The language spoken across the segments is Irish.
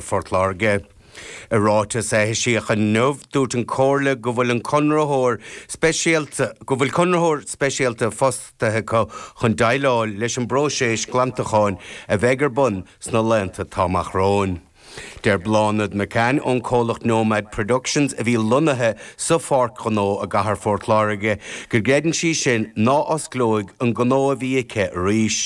Phort Láirge. I ráiteas a eisíodh inniu, dúirt an Chomhairle go bhfuil an conraitheoir speisialta go bhfuil conraitheoirí speisialta fostaithe acu chun déileáil leis an bpróiseas glantacháin a bheidh ar bun sna laethanta atá amach romhainn. Deir Bláthnaid McCann ón comhlacht Nomad Productions a bhí lonnaithe sa Pháirc Ghnó i gcathair Phort Láirge go gcreideann sí sin ná osclóidh an gnó a bhí aici arís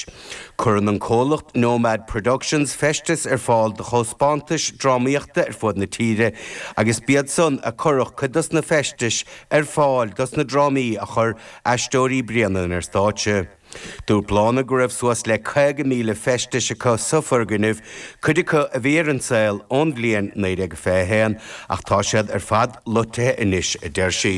Cuireann an comhlacht Nomad Productions feisteas ar fáil do thaispeántais drámaíochta ar fud na tíre agus b'iad san a chuireadh cuid dos na feistis ar fáil dos na drámaí a chuir Aisteoirí Bréanainn ar stáitse. Dúirt Bláthnaid go raibh suas le 50,000 feistis acu sa foirgneamh, cuid acu a bhí ar an saol ón bhliain 1921 ach tá siad ar fad loitithe anois, a deir sí.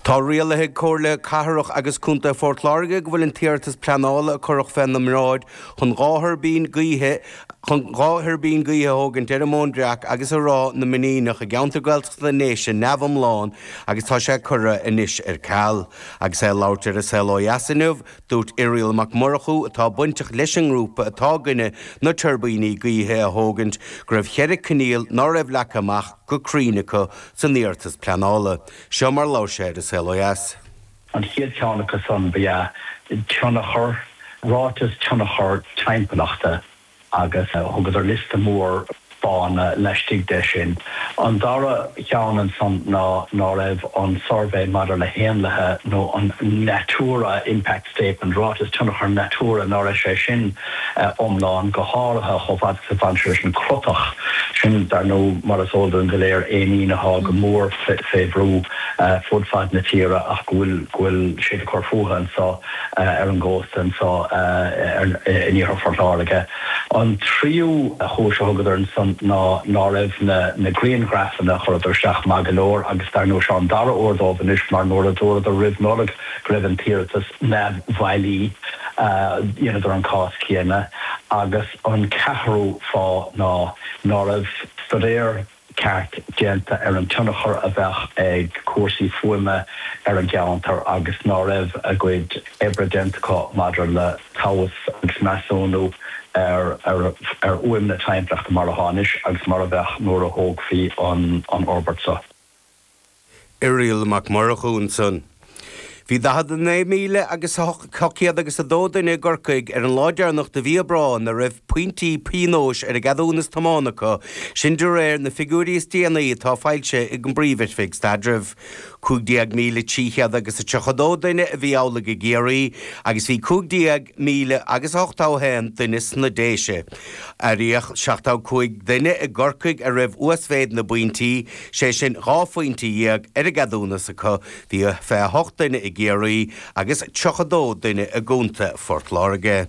Tá rialaithe ag Comhairle Cathrach agus Contae Phort Láirge go bhfuil an t-iarratas pleanála a cuireadh fé n-a mbráid chun dhá thuirbín gaoithe chun dhá thuirbín gaoithe a thógaint ar an Móin Bhreac agus i Ráth na Mainíneach i gceantar Gaeltachta na nDéise neamh-iomlán agus tá sé curtha anois ar ceal. Agus é ag labhairt ar An Saol Ó Dheas inniu, dúirt Irial Mac Murchú, atá bainteach leis an ngrúpa atá i gcoinne na tuirbíní gaoithe a thógaint, go raibh cheithre choinníoll ná raibh leagtha amach, go cruinn acu san iarratas pleanála. Seo mar a labhair sé ar An Saol Ó Dheas. An chéad cheann acu san ba ea tionchar, ráiteas tionchar timpeallachta agus thugadar liosta mór fáthanna laistigh de sin. An dara cheann ansan ná ná raibh an suirbhé maidir le héanlaithe nó an Natura Impact statement, ráiteas tionchar natura, ná raibh sé sin iomlán, go háirithe chomh fada is a bhain sé leis an gcrotach sin, dar ndóigh, mar is eol dúinn go léir, éinín athá go mór fé bhrú fud fad na tíre ach go bhfuil siad ag cur fútha anso ar an gcósta anso in Iarthar Phort Láirge. An tríú chúis a thugadar ansan ná ná raibh na grianghraifeanna a chuireadar isteach maith go leor agus dar ndóigh seo an dara uair dóibh anois mar nuair a dúradar roimh Nollaig go raibh an t-iarratas neamhbhailí, dheineadar an cás céanna agus an ceathrú fáth ná ná raibh stuidéar ceart déanta ar an tionchar a bheadh ag cúrsaí fuaime ar an gceantar agus ná raibh a gcuid oibre déanta acu maidir le tomhas agus measúnú ar fhuaim na timpeallachta mar athá anois agus mar a bheadh nuair a thógfaí an fhorbairt seo. Irial Mac Murchú ansan. Bhí 49,000 agus 800 agus 2 duine i gCorcaigh ar an lá deireanach de mhí Aibreáin a raibh pointí pionóis ar a gceadúnas tiomána acu, sin de réir na figiúirí is déanaí atá foilsithe ag an bPríomh-Oifig Staidrimh. 15,300 agus a 32 duine a bhí amhlaidh i gCiarraí agus bhí 15,000 agus a 81 duine sna Déise. Áiríodh 75 duine i gCorcaigh a raibh uasmhéid na bpointí, sé sin dhá phointe dhéag ar a gceadúnas acu, bhí 28 duine i gCiarraí agus 32 duine i gcontae Phort Láirge.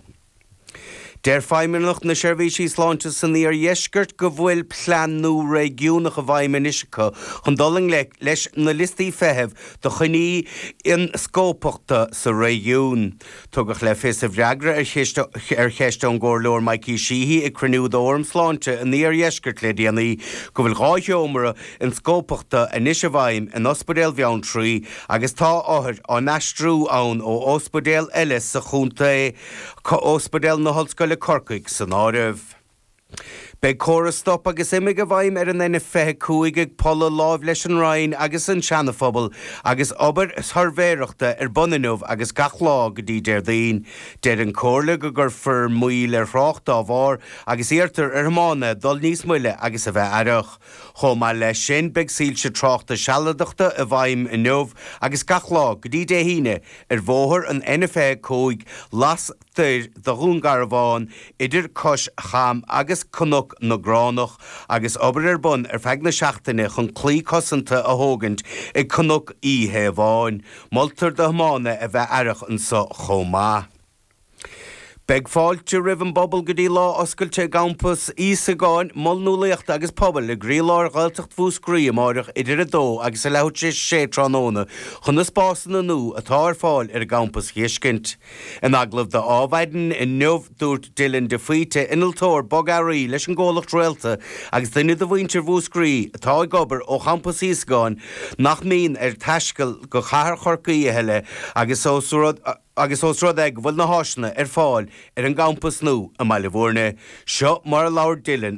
Deir Feidhmeannacht na Seirbhísí Sláinte san iardheisceart go bhfuil plean nua réigiúnach i bhfeidhm anois acu chun dul i ngleic leis na liostaí feithimh do choinní ionscópachta sa réigiún. Tugadh le fios i bhfreagra ar cheist ón gComhairleoir Mikey Sheehy ag cruinniú d'Fhóram Sláinte an Iardheiscirt le déanaí go bhfuil dhá sheomra ionscópachta anois i bhfeidhm in Ospidéal Bheanntraí agus tá othair á n-aistriú ann ó ospidéal eile sa chontae, Ospidéal na hOllscoile Corcaigh san áireamh. Beidh córas stop agus imigh i bhfeidhm ar an N25 ag Polla láimh leis an Rinn agus an Seanaphobal agus obair shuirbhéireachta ar bun inniu agus gach lá go dtí Déardaoin. Deir an Comhairle go gcuirfear moill ar thrácht dá bharr agus iarrtar ar thiománaithe dul níos moille agus a bheith aireach. Chomh maith leis sin beidh soilse tráchta sealadachta i bhfeidhm inniu agus gach lá go dtí Dé hAoine ar bhóthar an N25 las toir de Dhún Garbhán idir Cois Cham agus Cnoc na gCránach agus obair ar bun ar feadh na seachtaine chun claí cosanta a thógaint ag Cnoc Uí Thaobháin. Moltar do thiománaithe a bheith aireach anseo chomh maith. Beidh fáilte roimh an bpobal go dtí lá oscailte i gCampas Íosagáin, Mol Nualaíochta agus Pobail i gcroílár Ghaeltacht Mhúscraí amáireach idir 2 agus leathuair tar éis 6 tráthnóna chun na spásanna nua atá ar fáil ar an gcampas a fheiscint. In agallamh d'Adhmhaidin inniu, dúirt Dillon De Faoite, innealtóir bogearraí leis an gcomhlacht Réalta agus duine de mhuintir Mhúscraí atá ag obair ó champas Íosagáin, nach mbíonn air taisteal go cathair Chorcaí a thuilleadh agus ós rud é go bhfuil na háiseanna ar fáil ar an gcampas nua i mBaile Bhúirne, seo mar a labhair Dillon.